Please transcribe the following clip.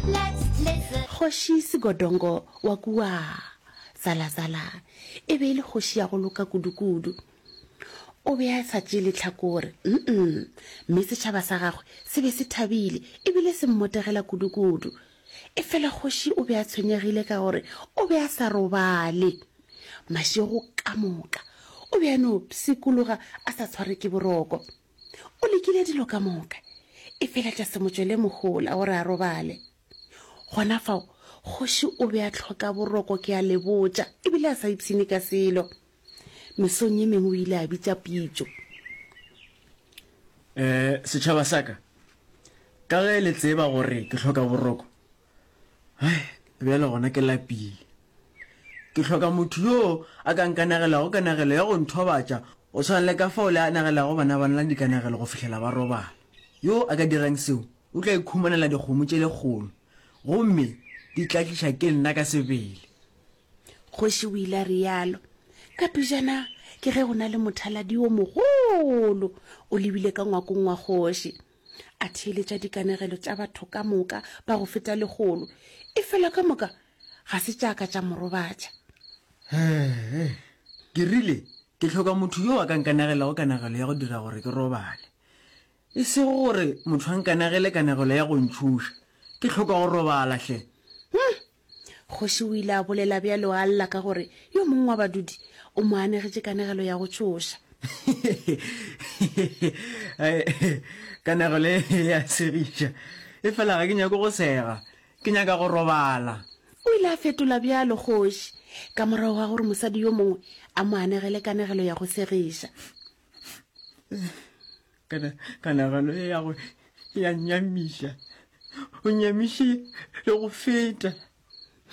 Kgoši Sigodongo wa kua Zalazala e be e le kgoši ya go loka kudukudu. O be a sa tšee lehlakore, mm-mm, mme setšhaba sa gagwe se be se thabile e bile se mmotegela kudukudu. Efela kgoši o be a tshwenyegile ka gore o be a sa robale. Mašego ka moka o be a no pshikologa a sa tshware ke boroko. O lekile dilo ka moka, e fela tša se motšwele mohola gore a robale. Gona fao, kgoši o be a tlhoka boroko ke a le botša, e bile a sa ipshine ka selo. Mesong ye mengwe o ile a bitša pitšo. Eh, setšhaba sa ka, ka ge le tseba gore ke hloka boroko, Bjale gona ke lapile. Ke hloka motho yo a ka nkanagelago kanagelo ya go nthobatša go swana le ka fao le anagelago bana ba nna dikanagelo go fihlela ba robala. Yo a ka dirang seo o tla ikhumanela dikgomo tše lekgolo gomme di tla tliša ke nna ka sebele. Kgoši o ile a realo. Ka pejana ke ge go na le mothaladi yo mogolo o lebile ka ngwakong wa kgoši. a theeletša dikanegelo tša batho ka moka ba go feta legolo e fela ka moka ga se tšaka tša morobatša ee ke rile ke tlhoka motho yo a ka nkanegelago kanegelo ya go dira gore ke robale e sego gore motho a nkanegele kanegelo ya go ntšhoša ke tlhoka go robala hle hmm, Kgoši o ile a bolela bjalo a lla ka gore yo mongwe wa badudi o mo anegetše kanegelo ya go tšhoša. Kanegelo e ya segiša, efela ga ke nyake go sega, ke nyaka go robala. O ile a fetola bjalo kgoši ka morago ga gore mosadi yo mongwe a mo anegele kanegelo ya go segiša. kanagano e ya gore ya nyamiša o nyamiše le go feta